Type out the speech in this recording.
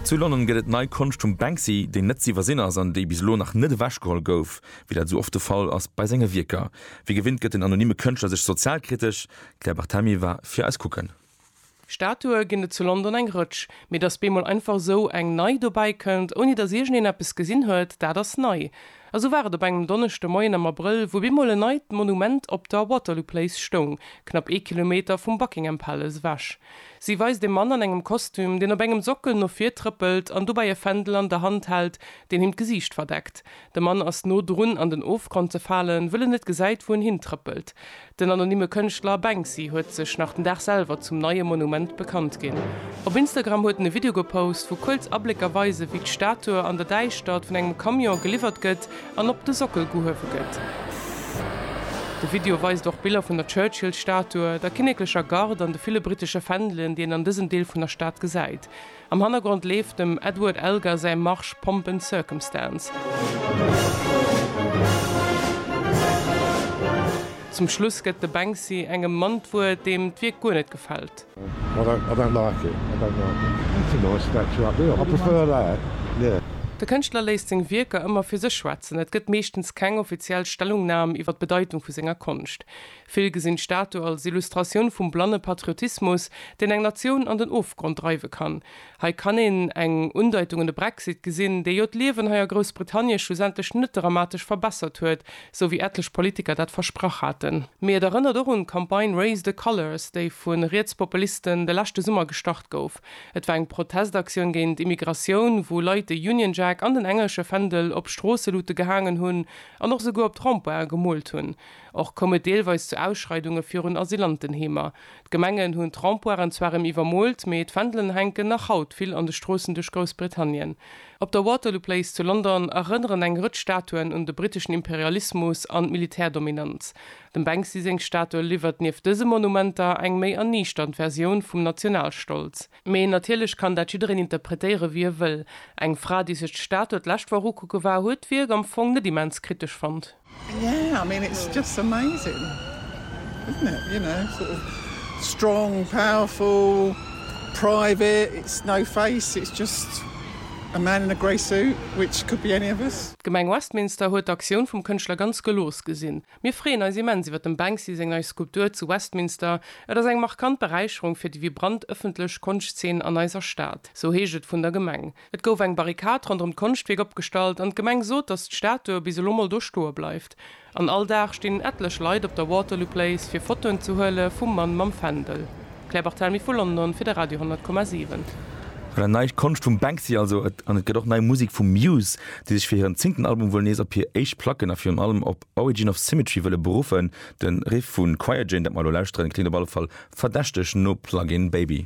Zu London gëtt et nei Konscht vum Banksy, déi net z'iwwersinn ass an déi bis elo nach net ewechgeholl gouf, wéi dat esou oft de Fall ass bei senge Wierker. Wéi gewinnt gëtt den anonymme Kënschtler sech sozialkritesch. D'Claire Barthelmy war fir eis kucken. Statue ginn et zu London eng Rëtsch, mee datt bemol einfach esou eng nei dobäi kënnt, ouni datt iergendeen eppes gesinn huet, dat ass nei. A sou war et op engem Donneschde Moien am Abrëll, wou bemol en neit Monument op der Waterloo Place stoung, knapp ee Kilometer vum Buckingham Palace ewech. Si weist e Mann an engem Kostüm, deen op engem Sockel no vir trëppelt an dobäi e Fändel an der Hand hält, deen him d'Gesiicht verdeckt. De Mann ass no drun an den Ofgrond ze falen, wëll en net gesäit, wou en hintrëppelt. Den anonymme Kënschtler Banksy huet sech nach den Dag selwer zum neie Monument bekannt ginn. Op Instagram huet en e Video gepost, wou kuerz Ablécker weisen, wéi d'Statue an der Däischtert vun engem Camion geliwwert gëtt an op de Sockel gehuewe gëtt. De Video weist och Biller vun der Churchill-Statue, der kinneklecher Garde an de ville brittesche Fändelen, déi een an dësem Deel vun der Stad gesäit. Am Hannergrond leeft dem Edward Elgar säi Marsch Pomp and Circumstance. Zum Schluss gëtt de Banksy engem Mann d'Wuert, deem d'Wierk guer net gefält. De Kënschtler léisst seng Wierker ëmmer fir sech schwätzen, et gëtt meeschtens keng offiziell Stellungnam iwwer d'Bedeitung vu senger Konscht. Vill gesinn d'Statu als Illustratioun vum blanne Patriotismus, deen eng Natioun an den Ofgrond dreiwe kann. Hei kann een eng Undeitung un de Brexit gesinn, dee jo d'Liewen hei a Groussbritannie schlussendlech net dramatesch verbessert huet, sou wéi etlech Politiker dat versprach haten. Mee et erënnert och un d'Campagne Raise the Colours, déi vu Rietspopulisten de leschte Summer gestart gouf. Et war eng Protestaktioun géint Immigratioun, wou Leit de Union Jack an den englesche Fändel op Stroosselute gehaangen hunn an och souguer op d'Rond-pointen gemoolt hunn. Och koum et deelweis zu Ausschreidunge virun Asylantenheemer. D'Gemengen hunn d'Rempoiren zwar rem iwwermoolt, mee d'Fändelen hänken nach haut vill an de Stroossen duerch Groussbritannien. Op der Waterloo Place zu London erënneren eng Rëtsch Statuen un de briteschen Imperialismus an d'Militärdominanz. Dem Banksy seng Statue liwwert nieft dëse Monumenter eng méi erniichternd Versioun vum Nationalstolz. Mee natierlech kann dat jiddereen interpretéiere wéi e wëll. Eng Fra, déi sech d'Statue d'lescht Woch ukucke war, huet d'Wierk am Fong net immens kritesch fonnt. D'Gemeng Westminster huet d'Aktioun vum Kënschtler ganz gelooss gesinn. Mir freeën eis immens iwwer dem Banksy seng nei Skulptur zu Westminster. Et ass eng markant Beräicherung fir déi vibrant ëffentlech Konschtzeen an eiser Stad, sou heescht et vun der Gemeng. Et gouf eng Barrikad ronderëm d'Konschtwierk opgestallt an d'Gemeng sot, datt d'Statue bis elo mol do stoe bleift. An all Dag stinn etlech Leit op der Waterloo Place fir Fotoen ze huele vum Mann mam Fändel. Claire Barthelmy vu London fir de Radio 10,7. An et nei Konscht vum Banksy also. An et gëtt och nei Musek vu Muse, déi sech fir hiren zéngten Album wuel nees op hir éischt Placken a virun allem op Origin of Symmetry wëlle beruffen. De Riff vu Quire Jane, dat mer elo lauschteren, kléngt op alle Fall verdächteg no Plug-In Baby.